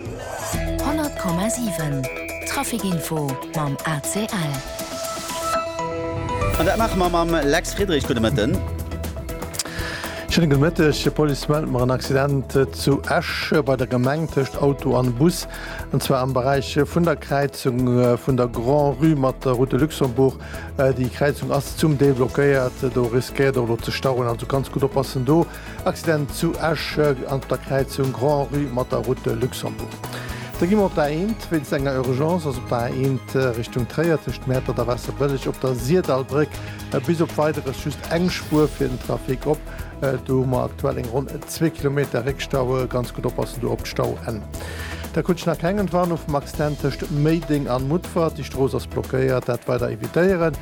100,7 Trafic Info mam ACL. An dat maache mer mam Lex Friedrich. Gudde Mëtten. Schéine gudde Mëtteg. D'Police mellt mer en Accident zu Esch bei der Gemeng tëscht Auto an Bus, an zwar am Beräich vun der Kräizung vun der Grand-Rue mat der Route de Luxembourg. Déi Kräizung ass zum Deel blockéiert, do riskéiert och elo ze stauen, also ganz gutt oppassen do. Accident zu Esch an der Kräizung Grand-Rue mat der Route de Luxembourg. Da gi mer op d'A1. Wéinst enger Urgence ass op der A1 Richtung Tréier tëscht Mäertert a Waasserbëlleg op der Sirdallbréck bis op Weideres just eng Spuer fir den Trafic op. Do hu mer aktuell eng ronn zwee Kilometer Réckstaue. Ganz gutt oppassen do op d'Stauenn. Da krut ech nach keng Entwarnung vum Accident tëscht Méideng an Mutfert. Déi Strooss ass blockéiert, dat weider evitéieren.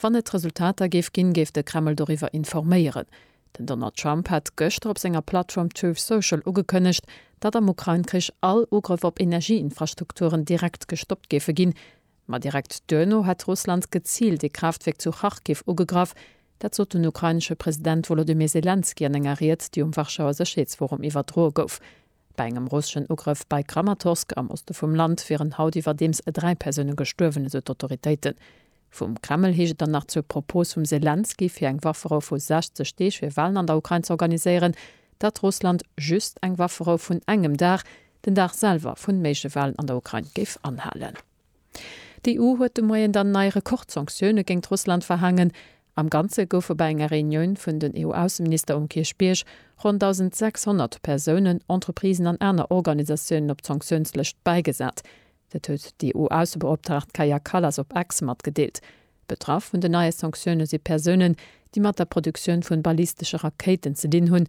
Wann et Resultater géif ginn, géif de Kreml doriwwer informéieren. Den Donald Trump hat gëschter op senger Plattform Truth Social ugekënnegt, datt am Ukrain-Krich all Ugrëff op Energieinfrastrukturen direkt gestoppt géife ginn. Ma direkt duerno hätt Russland geziilt ee Kraaftwierk zu Charkiw ugegraff. Dat sot den ukrainesche President Wolodymyr Selenskyj an enger Ried, déi um Warschauer Sécherheetsforum iwwerdroe gouf. Bei engem russeschen Ugrëff bei Kramatorsk am Oste vum Land wieren haut iwwerdeems e dräi Persoune gestuerwen, esou d'Autoritéiten. Vum Kreml heescht et dann nach zur Propos vum Selenskyj fir eng Wafferou vu 60 Deeg fir Walen an der Ukrain ze organiséieren, datt Russland just eng Wafferou vun engem Dag, den Dag selwer vun méigleche Walen an der Ukrain, géif anhalen. D'EU huet de Moien dann nei Rekordsanktioune géingt Russland verhaangen. Am Ganze goufe bei enger Reunioun vun den EU-Ausseminister um Kierchbierg ronn 1.600 Persounen, Entreprisen an aner Organisatiounen op d'Sanktiounslëscht bäigesat. Dat huet d'EU-Aussebeoptraagt Kaja Kallas op Ex matgedeelt. Betraff vun den neie Sanktioune si Persounen, déi mat der Produktioun vu ballistesche Rakéiten ze dinn hunn,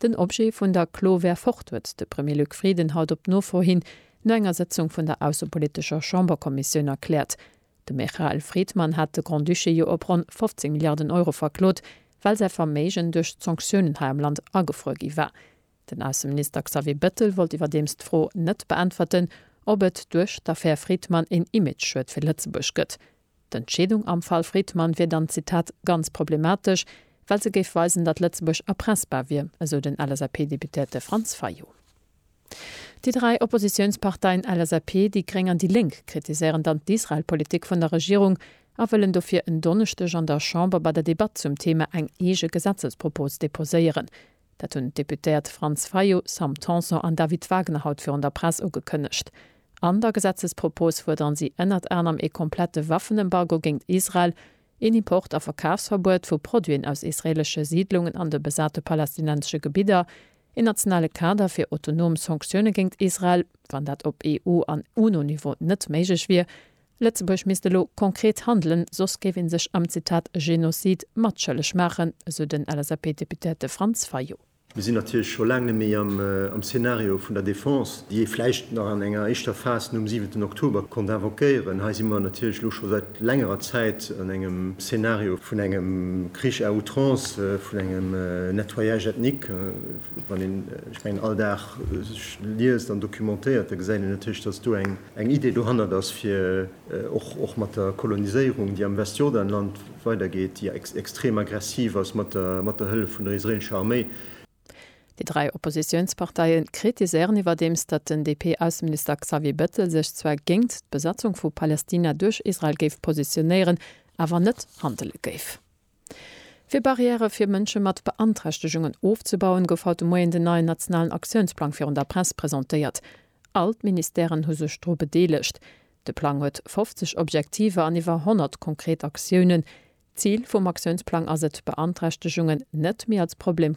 Den Objet vun der Klo wär fort, huet de Premier Luc Frieden haut op Nofro hin no enger Sëtzung vun der aussepolitescher Chamberkommissioun erkläert. De Me Chael Friedman hat de Grand-Duché jo op ronn 15 Milliarden Euro verklot, well säi Verméigen duerch d'Sanktiounen hei am Land agefruer gi war. Den Ausseminister Xavier Bettel wollt iwwerdeems d'Fro net beäntwerten, ob et duerch d'Affär Friedman een Image-Schued fir Lëtzebuerg gëtt. D'Entscheedung am Fall Fridman wier dann, Zitat, ganz problematesch, well se géif weisen, datt Lëtzebuerg erpressbar wier, esou den LSAP-Deputéierte Franz Fayot. Déi dräi Oppositiounsparteien LSAP, déi gréng an déi lénk kritiséieren dann d'Israel-Politik vun der Regierung a wëllen dofir en Donneschdeg an der Chamber bei der Debatt zum Theema eng eege Gesetzespropos deposéieren. Dat hunn d'Deputéiert Franz Fayot, Sam Tanson an David Wagner haut virun der Press ugekënnegt. An der Gesetzespropos fuerderen si ënnert anerem ee komplette Waffenembargo géint Israel, een Import a Verkafsverbuet vu Produiten aus israeelesche Siidlungen an de besate palästinensesche Gebidder, een nationale Kader fir autonom Sanktioune géint Israel, wann dat op EU an UNO-Niveau net méiglech wier, Lëtzebuerg misst elo konkret handelen, soss géif ee sech am, Zitat, Genocide matschëlleg maachen, esou den LSAP-Deputéierte Franz Fayot. Mir sinn natierlech scho laang net méi am Szenario vun der Defense, déi ee vläicht nach an enger éischter Phas nom siwenten Oktober konnt invoquéieren. Hei si mer natierlech elo scho säit längerer Zäit an engem Szenario vun engem Krich à outrance, vun engem Nettoyage ethnique. Wann een, ech mengen, all Dag sech liest an documentéiert, da gesäit een natierlech, dass do eng. eng Idee dohannert ass, fir och mat der Koloniséierung, déi am Westjordanland weidergeet, déi extrem aggressiv ass, mat der Hëllef vun der israeelescher Arméi. Déi dräi Oppositiounsparteie kritiséieren iwwerdeems, datt den DP-Ausseminister Xavier Bettel sech zwar géingt d'Besatzung vu Palästina duerch Israel géif positionéieren, awer net handele géif. Fir Barrièrë fir Mënsche mat Beanträchtegungen ofzebauen, gouf haut de Moien den neien nationalen Aktiounsplang virun der Press presentéiert. All d'Ministèren hu sech dru bedeelegt. De Plang huet 50 Objektiver an iwwer 100 konkret Aktiounen. D'Zil vum Aktiounsplang ass et, Beanträchtegungen net méi als Problem